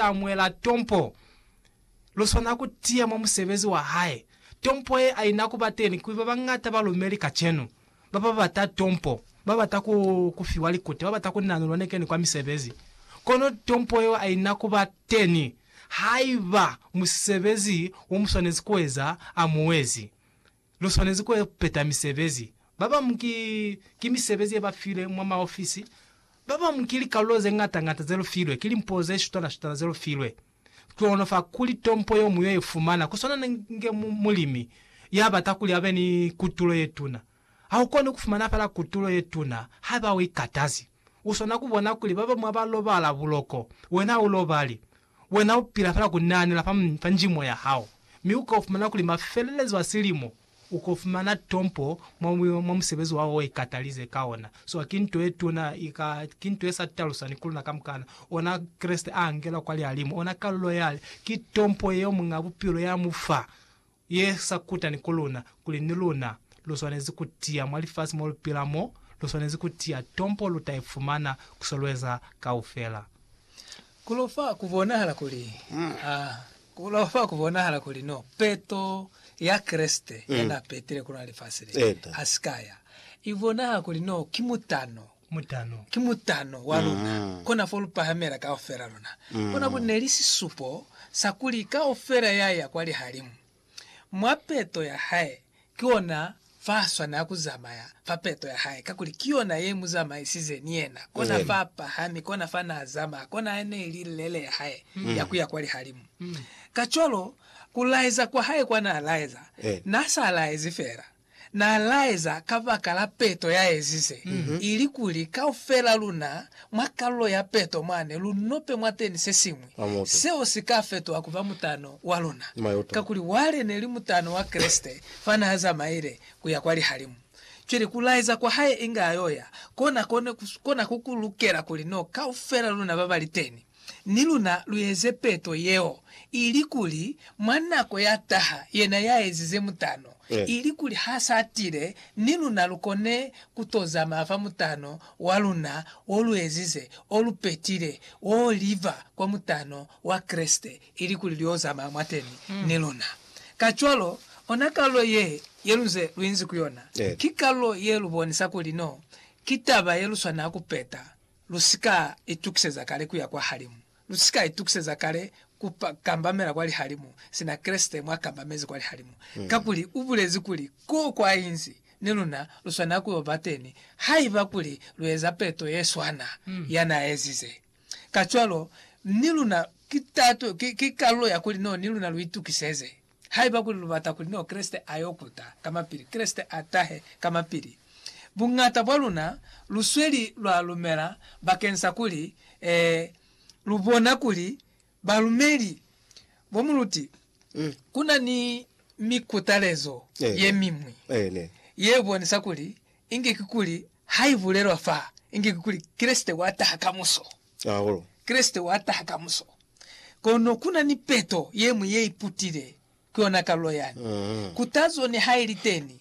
ta muela tompo. Lu swana ku tiya mwa musebezi wa hae. Tompo ye a i na ku ba teni kuli ba bañata ba lumeli kacenu. Ba ba bata tompo ba bata ku, ku fiwa likute, ba bata ku nanulwa nekeni kwa misebezi. Kono tompo yeo a i na ku ba teni haiba musebezi wo mu swanezi ku eza a mu ezi. Lu swanezi ku peta misebezi. Ba bamu ki, ki misebezi ye ba filwe mwa maofisi. Ba bamu ki likalulo ze ŋata-ŋata ze lu filwe, ki limpo ze shutana-shutana ze lu filwe. Kono fa kuli tompo yo mu yo i fumana, ku swana inge mu, mulimi ya bata kuli a be ni kutulo ye tuna. Ha u koni ku fumana fela kutulo ye tuna haiba u ikatazi. U swana ku bona kuli ba bamu ha ba lobala buloko, wena ha u lobali. Wena u pila fela ku naanela fa, fa njimo ya hao, mi u ko fumana kuli mafelelezo a silimo u ko fumana tompo mwa, mwa musebezi wa o ikatalize ka ona. Swa ki nto ye tuna i ka, ki nto ye sa talusani ku luna kamukana. Ona Kreste a angela kwa lihalimu, ona kalulo ya, ki tompo yeo Muñ'a Bupilo ya mu fa. ye sa kutani ku luna, kuli ni luna lu swanezi ku tiya mwa lifasi mo lu pila mo, lu swanezi ku tiya tompo lu ta i fumana ku se lu eza kaufela. Ku lo fa ku bonahala kuli, a, ku lo fa ku bonahala kuli no peto ya Kreste ya n'a petile ku luna lifasi le, ha si ka ya i bonahala kuli no ki mutano Mutano. Ki mutano wa luna kona fo lu pahamela kaufela luna. Kona ku ne li sisupo sa kuli kaufela ya ya kwa lihalimu. Mwa peto ya Hae, ki yona fa swanela ku zamaya, fa peto ya Hae, kakuli ki yona ye mu zamaisize ni Yena, kona fa pahami, kona fa na zamaya, kona ya ne li lele ya Hae ya ku ya kwa lihalimu. Kacwalo, ku laeza kwa Hae kwa na laeza, Na sa laezi fela. Na laeza kabakalaa peto ya ezize, ili kuli kaufelaa luna mwa kalulo ya peto mwani lu nope mwateni sesiñwi seo si ka fetoha kuba mutano wa luna. Kakuli wale ne li mutano wa Kreste fa naa zamaile kuya kwa lihalimu. Cwale ku laeza kwa hae inga ayo ya kona kona ku lukela kuli no kaufelaa luna babali teni. ni luna lu eze peto yeo, ilikuli mwa nako ya taha yena ya ezize mutano, ilikuli ha sa tile, ni luna lu kone ku to zamaya fa mutano wa luna wo lu ezize, o lu petile, wo liba kwa mutano wa Kreste, ilikuli lu yo zamaya mwateni ni luna. Kacwalo, ona kalulo ye, ye lu nze lu inzi ku yona, ki kalulo ye lu bonisa kuli no, ki taba ye lu swanela ku peta. Lu si ka itukiseza kale ku ya kwa halimu. Lu si ka itukiseza kale ku kambamela kwa lihalimu sina Kreste mwa kambamezi kwa lihalimu. Kakuli u bulezi kuli, Ko kwa inzi, ni luna lu swanela ku yo ba teni, haiba kuli lu eza peto ye swana ya n'a ezize. Kacwalo, ni luna ki tato, ki, ki kalulo ya kuli no ni luna lu itukiseze. Haiba kuli lubata kuli no Kreste ayo kuta kamapili, Kreste atahe kamapili. Buñata bwa luna lusweli lwa lumela bakensa kuli ee, lubona kuli balumeli bomuluti kuna ni mikutalezo yemiñwi yebonisa kuli inge kikuli haibulelwa fa inge kikuli Kreste wataha kamuso. Caulo. Kreste wa taha kamuso. Kono ku na ni peto ye ñwi ye iputile, ku yona kalulo yani. Kutazo niha i li teni,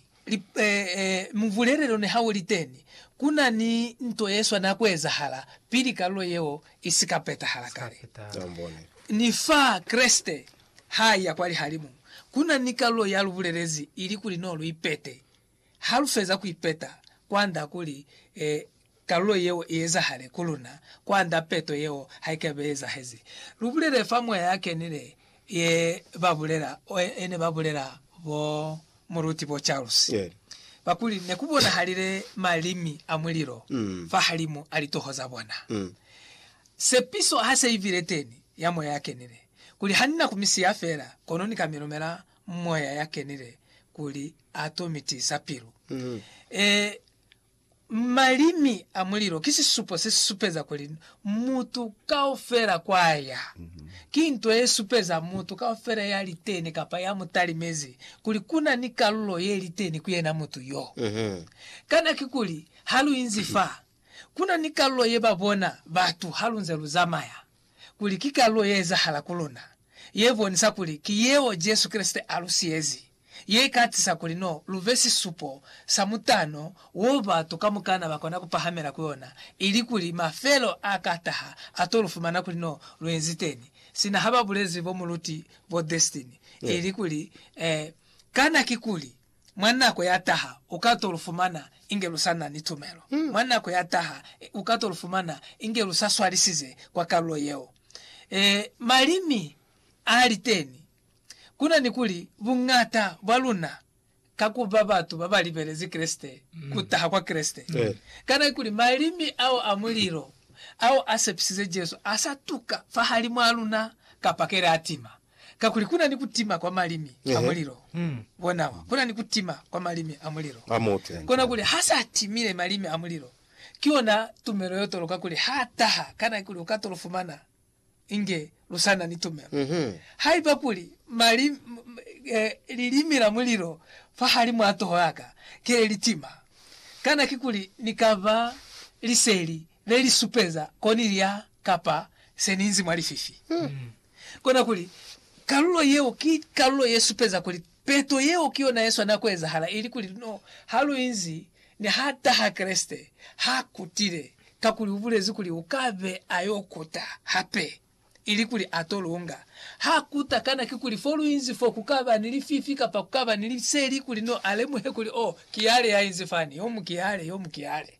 mubulelelo niha u li teni, ku na ni nto ye swana ku ezahala pili kalulo yeo i si ka petahala kale. Ni fa Kreste ha a iya kwa lihalimu, ku na ni kalulo ya lu bulelezi ili kuli no lu ipete Ha lu feza ku ipeta, kwand'a kuli kalulo yeo i ezahale ku luna, kwand'a peto yeo ha i ka be i ezahezi. Lu bulele fa moya ya kenile ye ba bulela, ye ne ba bulela bo Muruti bo Charles, ba kuli, Ne ku bonahalile malimi a mulilo fahalimu a litoho za bona. Sepiso ha se i bile teni, ya moya ya kenile, kuli ha ni na ku mi siya fela, kono ni ka mi lumela moya ya kenile kuli ato mi tiisa pilu. E, malimi a mulilo ki sisupo se supeza kuli mutu kaufela kwa ya. Ki nto ye supeza mutu kaufela ya li teni kapa ya mu talimezi kuli ku na ni kalulo ye li teni ku yena mutu yo. Kana kikuli ha lu inzi fa, ku na ni kalulo ye ba bona batu ha lu nze lu zamaya? kuli ki kalulo ye ezahala ku luna, ye bonisa kuli ki yeo Jesu Kreste a lu siyezi, ye ka tisa kuli no lu be sisupo sa mutano wo batu kamukana ba kona ku pahamela ku ona, ilikuli mafelo a ka taha a to lu fumana kuli no lu enziteni. Sina ha ba bulezi bomuluti bo Destiny, ilikuli, eh, kana kikuli? Mwa nako ya taha, u ka to lu fumana inge lu sa na ni tumelo. Mwa nako ya taha, u ka to lu fumana inge lu sa swalisize kwa kalulo yeo. Ee, malimi a li teni. Ku na ni kuli, buñata bwa luna, ka ku ba batu ba ba libelezi Kreste, ku taha kwa Kreste. Kana kuli malimi ao a mulilo ao a sepisize Jesu a sa tuka fahalimwaa luna? Kapa keli a tima? Kakuli kuna ni kutima kwa malimi a mulilo. Bonawa, kuna ni kutima kwa malimi a mulilo. Kona kuli ha sa timile malimi a mulilo, ki yona tumelo yo toloka kuli ha taha. Kana kuli u ka to lu fumana inge lu sa na ni tumelo? Haiba kuli lilimi la mulilo fahalimw'a toho ya ka ki le li tima, kana ki kuli ni ka ba liseli le li supeza ko ni lya kapa se ni inzi mwa lififi? Kona kuli, kalulo yeo ki kalulo ye supeza kuli peto yeo ki yona ye swanela ku ezahala, ili kuli, luno ha lu inzi ni ha taha Kreste, ha kutile, kakuli u bulezi kuli u ka be a yo kuta hape, ili kuli a to lunga. Ha kuta, kana ki kuli fo lu inzi fo ku ka ba ni lififi kapa ku ka ba ni liseli, kuli no a lemuhe kuli, Oh, ki yale ya inzi fani, yo mu ki yale, yo mu ki yale?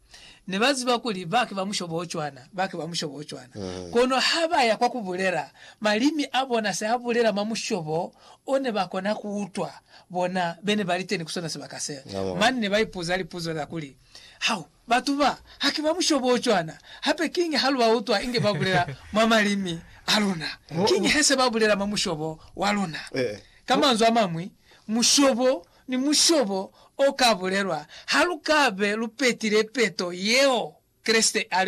Ne ba ziba kuli ba ki ba mushobo o cwana, ba ki ba mushobo o cwana. Kono ha ba ya kwa ku bulela, malimi a bona se a bulela mwa mushobo o ne ba kona ku utwa bona be ne ba li teni ku sona sibaka se. Mane ne ba ipuza lipuzo za kuli, Hau, batu ba, ha ki ba mushobo o cwana, hape kiñi ha lu ba utwa inge ba bulela mwa malimi a luna? Kiñi he se ba bulela mwa mushobo wa luna? Ka manzwi a mañwi, mushobo ni mushobo o ka bulelwa ha lu ka be lu petile peto yeo Kreste a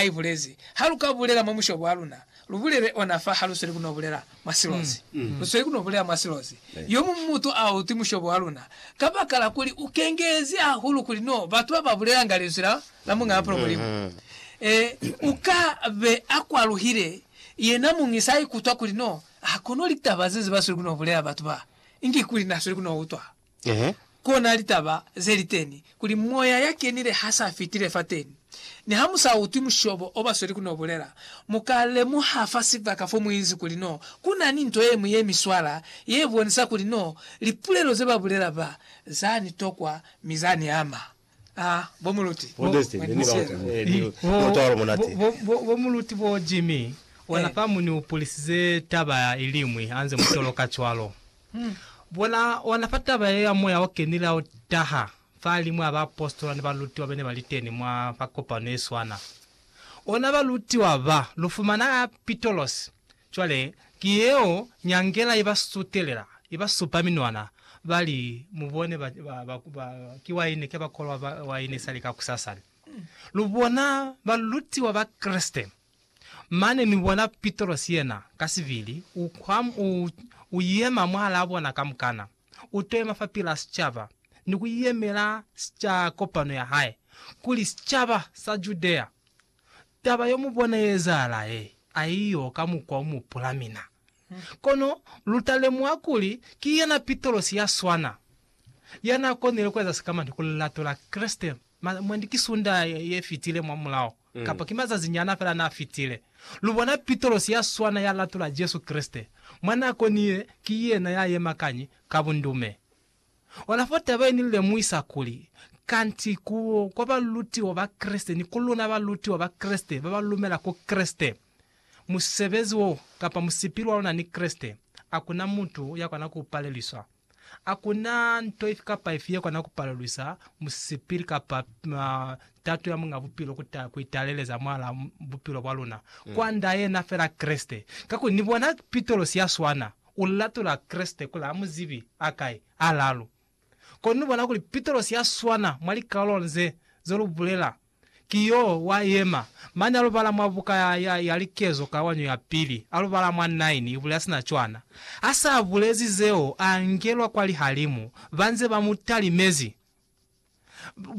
i bulezi. Ha lu ka bulela mwa mushobo wa luna, lu bulele ona fa ha lu sweli ku n'o bulela mwa silozi. Lu sweli ku n'o bulela mwa silozi. Yo muñwi mutu a utwi mushobo wa luna kabakala kuli u kengelezi hahulu kuli n'o batu ba ba bulelanga linzwi la Muñ'a Mapilo Mulimu, u ka be a kwaluhile yena muñi sa ikutwa kuli n'o ha kono litaba ze ze ba sweli ku n'o bulela batu ba. Inge kuli nasweli ku no utwa, kona litaba ze li teni, kuli Moya ya kenile ha sa fitile fateni. Ni ha mu sa utwi mushobo o ba sweli ku no bulela, mu ka lemuha fa sibaka fo mu inzi kuli no ku na ni nto ye ñwi ye mi swala, ye bonisa kuli no lipulelo ze ba bulela ba za ni tokwa mi za ni ama. bo Jimmy, ona fa mu ni upulisize taba i liñwi ha nze mu toloka cwalo. Bona, ona fa taba yeo ya Moya o Kenile ha u taha, fahalimu ha baapositola ni balutiwa ba ne ba li teni mwa, fa kopano ye swana. Ona balutiwa ba, lu fumana Apitolosi, Cwale, ki yeo nyangela i ba sutelela, i ba supa minwana, ba li, Mubone, ba, ba, ba, ba, ki waini, ke ba kolwa ba, waini isali kakusasa ne. Lu bona balutiwa ba Kreste. Mane mi bona Pitrosi yena, ka sibili, u kwa, u, u yema mwahalaa bona kamukana, u to yema fapilaa sicaba, ni ku yemela sica, kopano ya hae, kuli, Sicaba sa Judea, Taba yo mu bona ye ezahala he a i yo ka mukwa u mu pula mina. Kono lu ta lemuha kuli ki yena Pitrosi ya swana ya n'a konile ku eza sikamani ku lilato la Kreste. Mwendi ki Sundaha ye fitile mwamulaho, kapa ki mazazinyana fela n'a fitile, lu bona Pitrosi ya swana ya latola Jesu Kreste. Mwa n'a konile, ki yena ya yema kañi ka bundume. Ona fo taba ye ni lemuhisa kuli, Kanti ku kwa balutiwa ba Kreste ni ku luna balutiwa ba Kreste ba ba lumela ku Kreste, musebezi wo kapa musipili wa luna ni Kreste, a ku na mutu ya kona ku palelwiswa. A ku na nto ifi kapa ifi ye kona ku palelwisa musipili kapa tato ya Muñ'a Bupilo ku ta ku italeleza mwal'a bupilo bwa luna, kwa nda yena fela Kreste. Kakuli ni bona pitolosi ya swana. U latula Kreste kuli a mu zibi a kai? Alalu. Kono ni bona kuli Pitrosi ya swana mwa likalolo nze ze lu bulela, ki yo wa yema mane a lu bala mwa buka ya, ya, ya Likezo Kawanyo ya Pili, a lu bala mwa 9, i bulela sina cwana. A sa bulezi zeo, a ngelwa kwa lihalimu, ba nze ba mu talimezi.